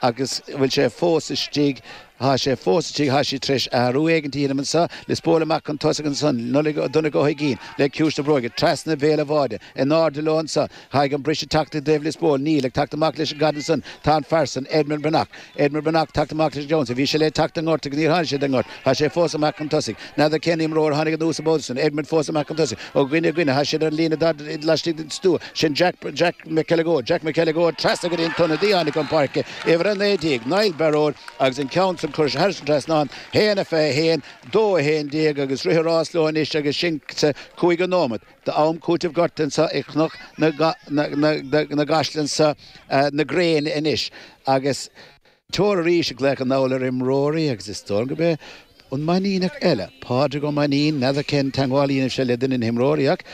Agus bhfuil sé fós istigh? Thá sé fós istigh, thá sé t'réis athrú éigint a dhéanamh anso, Lios Póil amach chun tosaigh ansan, Nollaig Ó Donncha Ó hUiginn, le ciumhais na bróige, treasna bhéal a' bháide, in áirde leo anso, thá an briseadh a' teacht i dtaobh Lios Póil, níl, ag teacht amach leis an gcaid ansan, tá an fear san, Edmond Breathnach, Edmond Breathnach ag teacht amach leis an gceann san, bhí sé le teacht den ngort agus níor tháinig sé den ngort, Tá sé fós amach chun tosaigh. N'fheadar cén imreoir a tháinig anuas ab óige sin, Edmond fós amach chun tosaigh, ó dhuine go duine. Tá siad ar an líne darda laistigh den stua sin Jack Jack McElligott Jack McElligott trasna go dtí an t-ionadaí a tháinig chun páirce, uimhir 19, Niall Baróid, agus an ceann san curtha thar an trasnán, 1 a 21, 2 a 11, agus rith a rás leo anois agus sinn sa chúigiú nóiméad d'am cúitimh gortaithe anseo i gCnoc na gCaiseal insa ngréin anois agus Tor arís ag glaoch anall ar imreoirí agus is dóigh gurb é an Mainníneach eile, Pádraig Ó Mainnín, n'fheadar cén teagmháil a dhéanfaidh sé le duine de na himreoirí ach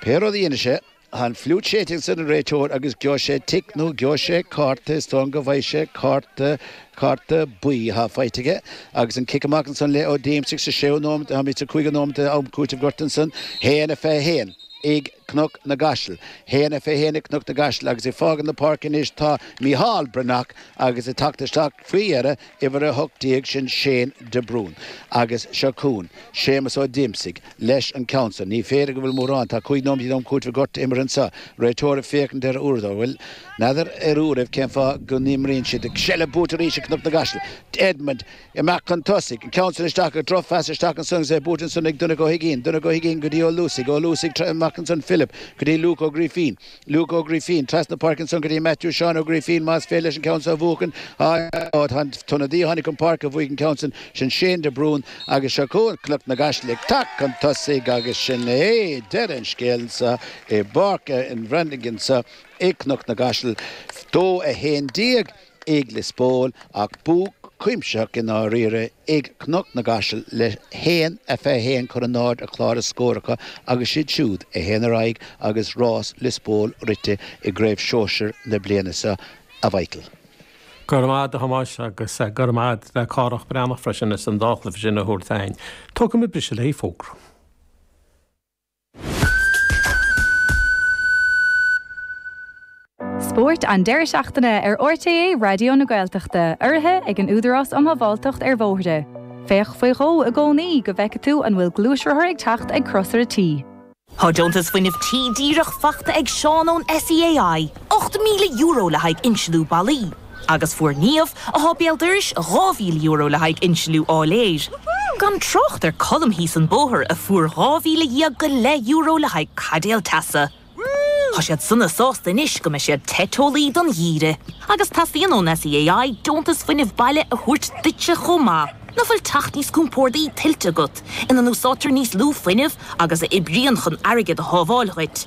pé rud a dhéanfaidh sé, tá an fliúit séidte ag an réiteoir agus gheobhaidh sé tic nó gheobhaidh sé cárta, is dóigh go bhfaighidh sé cárta, cárta buí atá faighte aige agus an cic amach ansan le Ó Díomasaigh sa séú nóiméad, táimid sa cúigiú nóiméad de am cúitimh gorta ansan, haon a fiche a haon ag Cnoc na gCaiseal, haon a fiche a haon ag Cnoc na gCaiseal agus ag fágáil na páirce anois tá Micheál Breathnach. agus ag teacht isteach faoi dheireadh uimhir 18 sin Shane de Brún agus seo chugainn Séamus Ó Díomasaigh leis an gceann san. Ní féidir go bhfuil mórán, tá cúig nóimintí d'am cúitimh gorta imeartha anso, réiteoir ag féachaint ar a uaireadóir, bhuel, n'fheadar ar uairibh cén fáth go n-imríonn siad, ach seilbh buaite arís ag Cnoc na gCaiseal, Edmond. Imeacht chun tosaigh, an ceann san isteach ach drochphas, isteach ansan agus é buaite ansan ag Donncha Ó hUiginn, Donncha Ó hUiginn go dtí Ó Luasaigh, Ó Luasaigh trasna, amach ansan Philip go dtí Luke Ó Grífín, Luke Ó Grífín trasna na páirce ansan go dtí Matthew Sheáin Ó Grífín, más féidir leis an ceann so a bhuachan, á, á, tá an t-ionadaí a tháinig chun páirce a bhuaigh an ceann san, sin Shane de Brún agus seo chugainn Cnoc na gCaiseal ag teacht chun tosaigh agus sin é deireadh an scéil anso i bPáirc an Bhreathnaigh anso i gCnoc na gCaiseal. Dó a haon déag. ag Liospóil, ach bua cuimsitheach i ndáiríre ag Cnoc na gCaiseal, le haon a fiche a haon curtha in airde ar chlár na scór acu agus is iad siúd a théann ar aghaidh agus rás Liospóil rite i gcraobh shóisir na bliana seo, A Mhichíl. Go raibh maith a't a Thomáis agus go raibh maith a't le Cárthach Breathnach freisin as an dá chluife sin a thabhairt chúinn. Tógfaimid briseadh le haghaidh fógra. Spórt an deireadh seachtaine ar RTÉ Raidió na Gaeltachta, urraithe ag an Údarás um Shábháilteacht ar Bhóithre. Féach faoi dhó i gcónaí go bhfeicfidh tú an bhfuil gluaisrothar ag teacht ag Crosaire T. Tá deontas Fuinneamh Tí díreach faighte ag Seán ón SEAI, €8,000 le haghaidh insliú ballaí. Agus fuair Niamh, atá béal dorais, dhá mhíle euro le haghaidh insliú áiléir. Gan trácht ar Colm thíos an bóthar, a fuair dhá mhíle dhéag go leith euro le haghaidh caidéal teasa. Tá siad sona sásta anois go mbeidh siad te teolaí don gheimhreadh. Agus teastaíonn ón SEAI deontas fuinnimh baile a thabhairt duitse chomh maith. Nach bhfuil teach níos compórdaí tuillte agat, ina n-úsáidtear níos lú fuinnimh agus a oibríonn chun airgead a shábháil dhuit?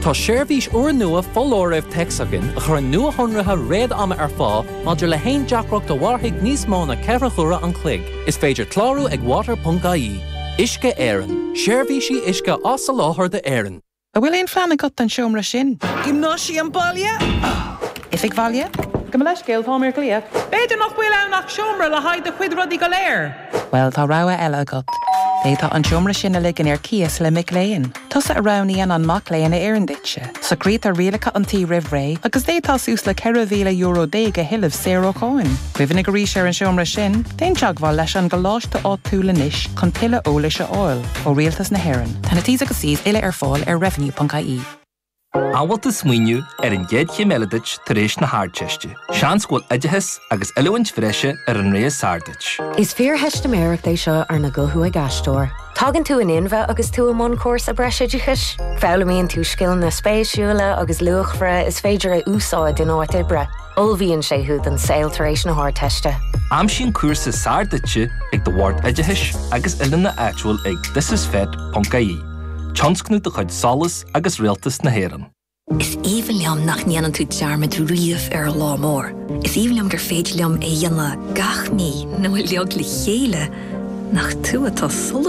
Tá seirbhís úrnua foláirimh téacs againn a chuireann nuashonruithe réad-ama ar fáil maidir le haon deacracht a mhairfidh níos mó ná ceithre huaire an chloig. Is féidir clárú ag water.ie. Uisce Éireann, seirbhísí uisce á soláthar d'Éirinn. An bhfuil aon phlean agat don seomra sin? Giomnáisiam baile? Oifig bhaile? Gabh mo leithscéal, táim ar ghlaoch. B'fhéidir nach bhfuil ann ach seomra le haghaidh do chuid rudaí go léir. Bhuel, tá rogha eile agat. D'fhéadfá an seomra sin a ligean ar cíos le mic léinn. Tusa a roghnaíonn an mac léinn a oireann duitse. Socraítear rialacha an tí roimh ré agus d'fhéadfá suas le ceithre mhíle euro déag a thuilleamh saor ó cháin. Cuimhnigh arís ar an seomra sin. Déan teagmháil leis an gcoláiste áitiúil anois chun tuilleadh eolais a fháil. Ó Rialtas na hÉireann. Tá na T's agus C's uile ar fáil ar revenue.ie. An bhfuil tú ag smaoineamh ar an gcéad chéim eile duit tar éis na hArdteiste. Seans go bhfuil oideachas agus oiliúint bhreise ar an rogha is fearr duit. Is fíortheistiméireacht é seo arna guthú ag aisteoir. Tagann tú in inmhe agus tú i mbun cúrsa breisoideachais. Foghlaimíonn tú scileanna spéisiúla agus luachmhara is féidir a úsáid in áit oibre. Ullmhaíonn sé thú don saol tar éis na hArdteiste. Aimsigh an cúrsa is fearr duitse ag do Bhord Oideachais agus Oiliúna áitiúil ag thisisfet.ie. Tionscnamh de chuid SOLAS agus Rialtas na hÉireann. Is aoibhinn liom nach ndéanann tú dearmad riamh ar ár lá mór. Is aoibhinn liom gur féidir liom é a dhéanamh gach mí nó uilig le chéile, nach tú atá sula.